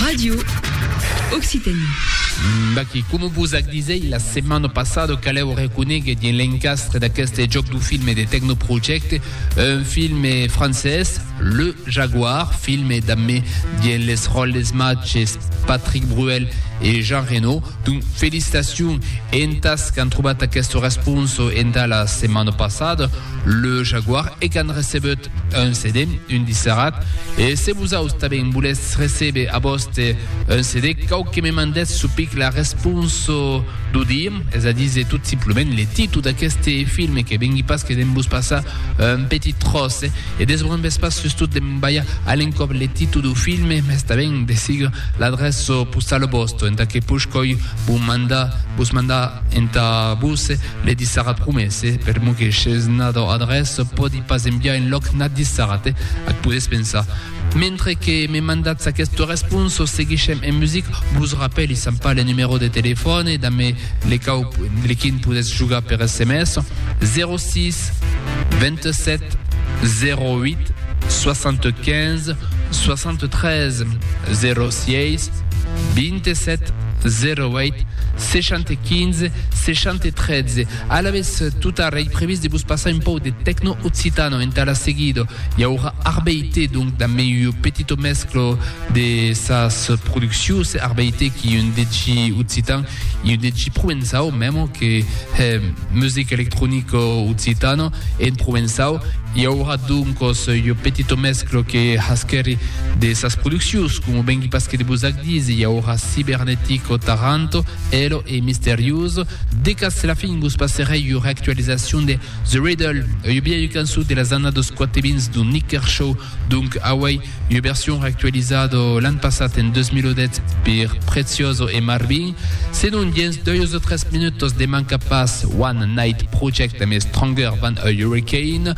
Radio Occitanie. D'aquí, coma vos ac disèi la setmana passada, calèu reconéguer dins l'encastre d'aqueste jòc du filme de Tecnoprojecte, un filme francés, Le Jaguar, filme dambe dins les ròles matges Patrick Bruel e Jean Reno. Donc, felicitacions entas qu'an trobat aquesta responsa entà la setmana passada. Le Jaguar e qu'an recebut un CD, un disserat, e se vosaus tanben volètz recebe a vòste un CD, cau que me mandètz su pic la responso d'o dir, es a díser tot simplement le titu d'aqueste filme que vengui pas que de'n vos passar un petit tròç e desbrun ves pas sustot de'n balhar a l'encòp le titu d'o filme, mès tanben de sigur l'adreço postalo vòsto entà que push coi Vos manda, vos manda entà vos le dissara promesse, per mo que s'es nadò adrès, pòdi pas enviar en lòc n'a dissarate, ac podes pensar. Mentre que me mandatz aqueste respons, seguishem en music, vos rapèli s'an pas le numero de telefòne, damé le cau le quin podetz jogar per sms, 06 27 08 75 73 06 27 08 75 60 13 Alavetz, tot ara ei previst de vos passar un pòu de tecno occitano entà la seguida. I aurà Arbeite, donc dambe ua petita mescla de sas produccions, Arbeite qu'ei un DJ occitan e un DJ provençau memo que hè musica electronica occitana en provençau. I aurà doncas ua petita mescla que hasquèri de sas produccions, coma vengui pas que de vos ac. Disi i aurà cibernetic o Taranto, elo e misteriós, de cas se la fin vos passerèi ua reactualizacion de The Riddle, ua biaia cançon de las annas dos quatebins d'Un Nik Kershaw, donc auei ua version reactualizada l'an passat en 2008 per Prezioso e Marvin, senon dens doios o tres minutos de manca pas One Night Project mès Stronger Than a Hurricane.